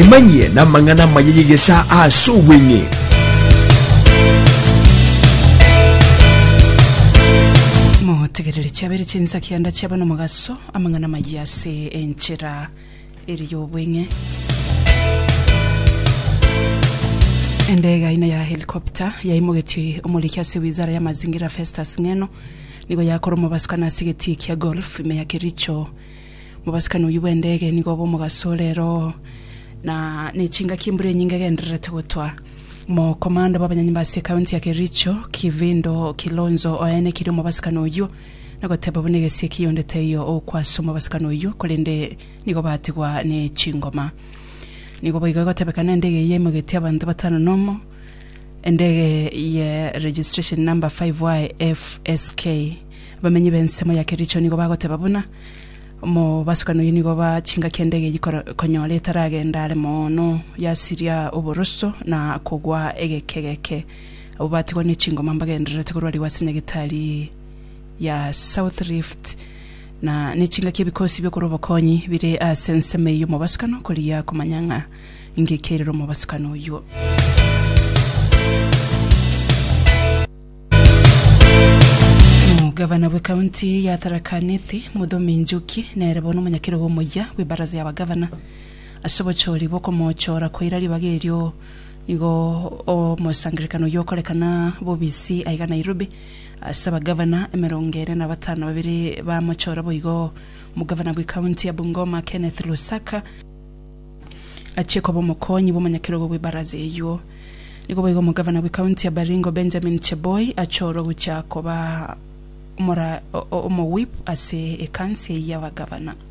emanyie namang'ana amaya y'egesa ase obweng'e motegerere chiabere chinsa kianda chiaba nomogaso amang'ana amaya ase enchera eri y'obweng'e. Endege aina ya helikopta yaimogetie omoriki ase wizara ya mazingira Festus Ng'eno nigo yakora omobasukani ase egetii kia golf ime ya Kericho. Mobasukani oyio bw'endege nigo obe omogaso ore ero na nechingaki embura enyinge egendererete gotwa. Mokomanda bw'abanyanyimba ase ekaunti ya Kericho Kivindo Kilonzo oenekirie omobasukani oyio na goteba buna egesie ekiya onde taiyo okwasoma obasakani oyio, korende nigo batigwa ne chingoma. Nigo boigo egotebeka na endege eyio emogetie abanto batano nomo, endege ye registration number 5YFSK. Abamenyi b'ensemo ya Kericho nigo bagoteba buna omobasukani oyio nigo ba chingaki endege eyio koro- konyora etaragenda are moono yasiria oboroso na kogwa egekegeke. Abwo batigwa ne chingoma mbagendererete korwarigwa ase Nyagetari ya South Rift na nechingaki ebikosi biokora obokonyi bire ase ensemo eye omobasukano korigia komanya ng'a ngiki erire omobasukano oyuo. Omogavana bwe kaunti ya Tharaka Nithi Muthomi Njuki nere bono omonyakerogo omoyia bwe baraza ya bagavana ase obochori bw'okomochora koira ribaga erio nigo omosangererekano oyio okorekana bobisi aiga Nairobi Ase abagavana emerongo ere na batano babere bamochora boigo, omogavana bwe county ya Bungoma Kenneth Lusaka, achie koba omokonyi bw'omonyakerogo bwe baraza eyio. Nigo boigo omogavana bwe county ya Baringo Benjamin Cheboi achorwa gochia koba omowhip ase ekansi eyio y'abagavana.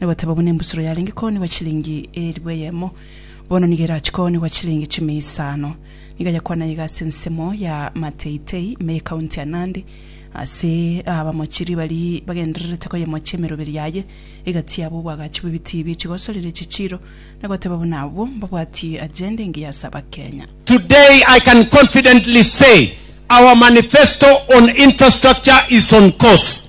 na bateba buna embusuro yarenge koonigwa chilingi eeribu eyemo, bono nigo erache koonigwa chilingi echiumi isano. Nigo ayakwana iga ase ensemo ya Mateitei, me ekaunti ya Nandi, ase abamochiri baria bagendererete koyemochia emeroberi yaye, egati yabo obwagachi bw'ebitii bie chigosorera echichiiro, na goteba buna abwo mbabwatie agenda engiya ase Abakenya. Today I can confidently say our manifesto on infrastructure is on course.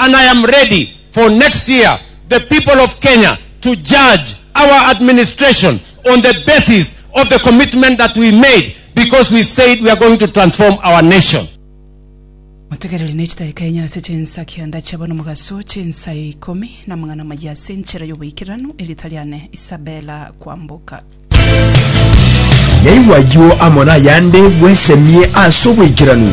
and I am ready for next year the people of Kenya to judge our administration on the basis of the commitment that we made because we said we are going to transform our nation. Motegereri ne chitaika enye ase chinsa kianda chiabo nomogaso, chinsa ya ikomi na amang'ana amayia ase enchera y'oboikeranu, erieta riane Isabella Kwamboka. Naigwa ayio amo nayande bwesemie ase oboikeranu.